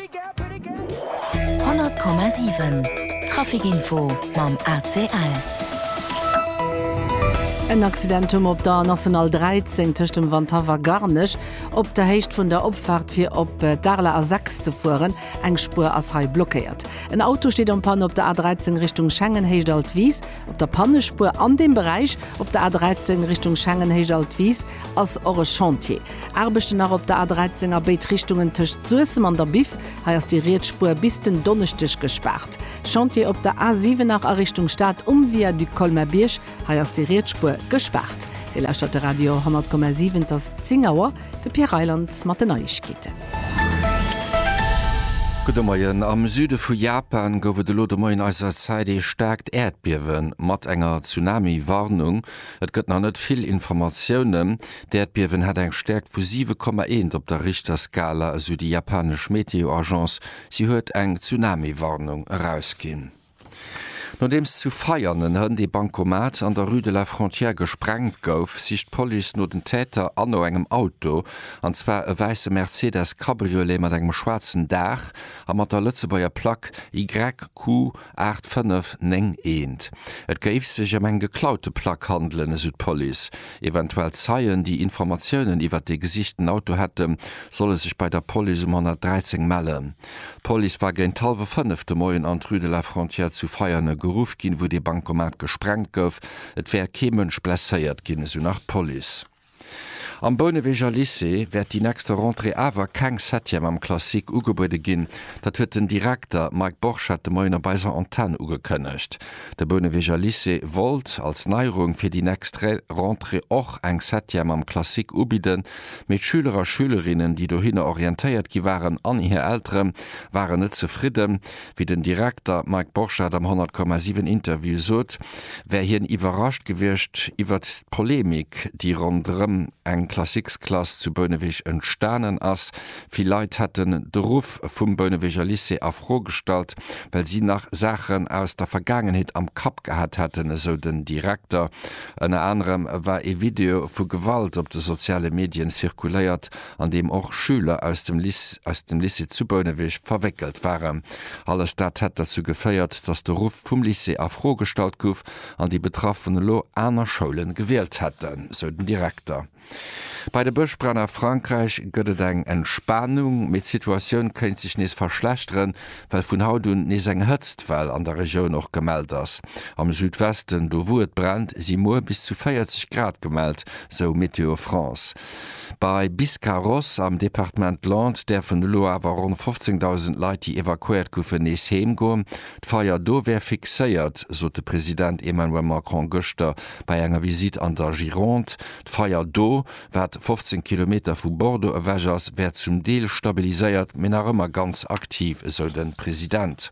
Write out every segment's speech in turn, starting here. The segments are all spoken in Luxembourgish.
100,7 Traficinfo mam ACL. En Accident um op der National 13 tëscht dem Wanthaff a Garnech, op der Héicht vun der Opfaart fir op d'Areler A6 ze fueren. Eng Spuer ass hei blockéiert. En Auto steet en Panne op der A13 Richtung Schengen, Héicht Altwis. Op der Pannespuer an deem Beräich op der A13 Richtung Schengen, Héicht Altwis ass och e Chantier. Aarbechten nach op der A13 a béid Richtungen tëscht Suessem an der Biff. Hei ass déi riets Spuer bis den Donneschdeg gespaart. Chantier op der A7 nach a Richtung Stad um Viaduc Colmer-Bierg. Hei ass déi riets Spuer gespaart. Dir lauschtert de Radio 100,7. Et ass 10 Auer. De Pierre Reyland mat den Neiegkeeten. Gudde Moien. Am Süde vu Japan gouf et elo de Moien eiser Zäit ee staarkt Äerdbiewe mat enger Tsunami-Warnung. Et gëtt nach net vill Informatiounen. D'Äerdbiewen hat eng Stäerkt vu 7,1 op der Richterskala, esou déi japanesch Meteo-Agence. Si huet eng Tsunami-Warnung erausginn. Nodeems zu Veianen en Hënn ee Bancomat an der Rue de la Frontière gesprengt gouf, sicht d'Police no den Täter an no engem Auto, an zwar e wäisse Mercedes Cabriolet mat engem schwaarzen Daach a mat der Lëtzebuerger Plack YQ Aacht fënnef néng eent. Et géif sech ëm eng geklaute Plack handelen, esou d'Police. Eventuell Zeien, déi Informatiounen iwwert dee gesichten Auto hätten, solle sech bei der Police um 113 mellen. D'Police war géint hallwe fënnef de Moien an d'Rue de la Frontière zu Veianen geruff ginn, wou dee Bankomat gesprengt gouf. Et wär kee Mënsch blesséiert ginn, esou nach d'Police. Am Bouneweger Lycée wäert déi nächste Rentrée awer keng Septième am Classique ugebuede ginn. Dat huet den Direkter Mike Borchert de Moien op eiser Antenn ugekënnegt. De Bouneweger Lycée wollt als Neierung fir déi nächst Rentrée och eng Septième am Classique ubidden, mee d'Schüler a Schülerinnen, déi dohinner orientéiert gi waren, an hir Eltere waren net zefridden. Wéi den Direkter Mike Borchardt am 100,7 Interview sot, wär hien iwwerrascht gewiescht iwwert d'Polemik, déi ronderëm eng Classiques-Klass zu Bouneweg entstanen ass. Vill Leit hätten de Ruff vum Bouneweger Lycée a Fro gestallt, well si nach Saachen aus der Vergaangenheet am Kapp gehat hätten, esou den Direkter. Ënner anerem war ee Video vu Gewalt op de soziale Medien zirkuléiert, an deem och Schüler aus dem aus dem Lycée zu Bouneweg verwéckelt waren. Alles dat hätt derzou geféiert, datt de Ruff vum Lycée a Fro gestallt gouf an déi Betraffen elo aner Schoule gewielt hätten, sou den Direkter. Bei de Bëschbränn a Frankräich gëtt et eng Entspanung, mee d'Situatioun kéint sech nees verschlechteren, well vun haut un nees eng Hëtztwell an der Regioun och gemellt ass. Am Südwesten, do wou et brennt, si muer bis zu 40 Grad gemellt, sou Météo France. Bei Biscarrosse am Departement Landes däerfen elo awer ronn 15.000 Leit, déi evakuéiert goufen, nees heem goen. D'Feier do wär fixéiert, sot de President Emmanuel Macron gëschter bei enger Visitt an der Gironde. D'Feier do, wat 15 Kilometer vu Bordeaux ewech ass, wär zum Deel stabiliséiert, mee nach ëmmer ganz aktiv, esou de President.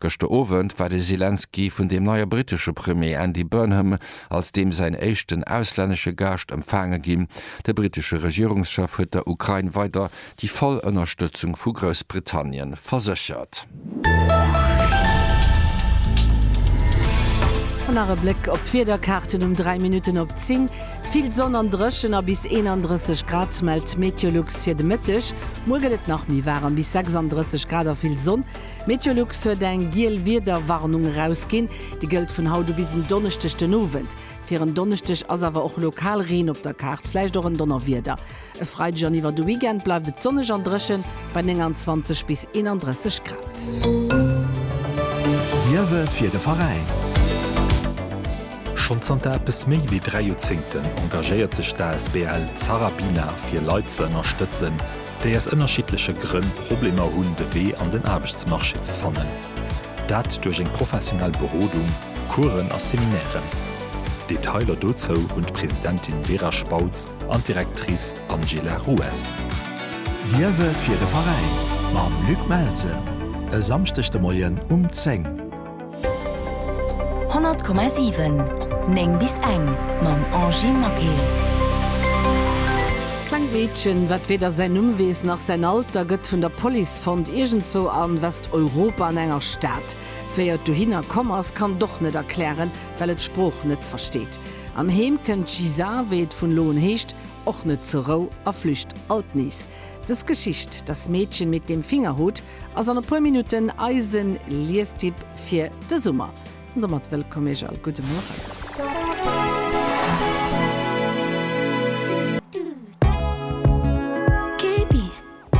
Gëschter Owend war de Selenskyj vun dem neie brittesche Premier Andy Burnham als deem säin éischten auslännesche Gaascht empfaange ginn. De brittesche Regierungschef huet der Ukrain weider déi voll Ënnerstëtzung vu Groussbritannien verséchert. An nach e Bléck op d'Wiederkaarten um 3 Minutten op 10. Vill Sonn an dréchen a bis 31 Grad mellt d'Meteolux fir de Mëtteg. Muer gëtt et nach méi waarem, bis 36 Grad a vill Sonn. Meteolux huet eng giel Wiederwarnung erausginn. Déi gëllt vun haut u bis en Donneschdeg den Owend. Fir en Donneschdeg ass awer och lokal Reen op der Kaart, vläicht och en Donnerwieder. E Freideg an iwwer de Weekend bleift et sonneg an dréchen, bei 29 bis 31 Grad. Liewe fir de Veräin. Schonn zanter eppes méi wéi dräi Joerzéngten engagéiert sech d'asbl Zarabina fir Leit ze ënnerstëtzen, déi aus ënnerschiddleche Grënn Problemer hunn de Wee an den Aarbechtsmarché ze fannen, dat duerch eng professionell Berodung, Coursen a Seminairen. Detailer dozou hunn d'Presidentin Vera Spautz an d'Directrice Angela Ruess. Liewe fir de Veräin mam Luc Melse e Samschdeg de Moien um 10. 100,7 9 bis eng mam Angie Maquet. Klengt Meedchen, wat weder säin Numm weess nach säin Alter, gëtt vun der Police fonnt iergendzwou a Westeuropa an enger Stad. Wéi et dohinner komm ass, kann et och net erklären, well et d'Sprooch net versteet. Am Heem kënnt d'Gisa, wéi et vun elo un heescht, och net zur Rou a flücht alt nees. Des Geschicht, Das Mädchen mit dem Fingerhut, ass an e puer Minutten eisen Liestipp fir de Summer. An domat wëllkomm Iech all. Gudde Mueren.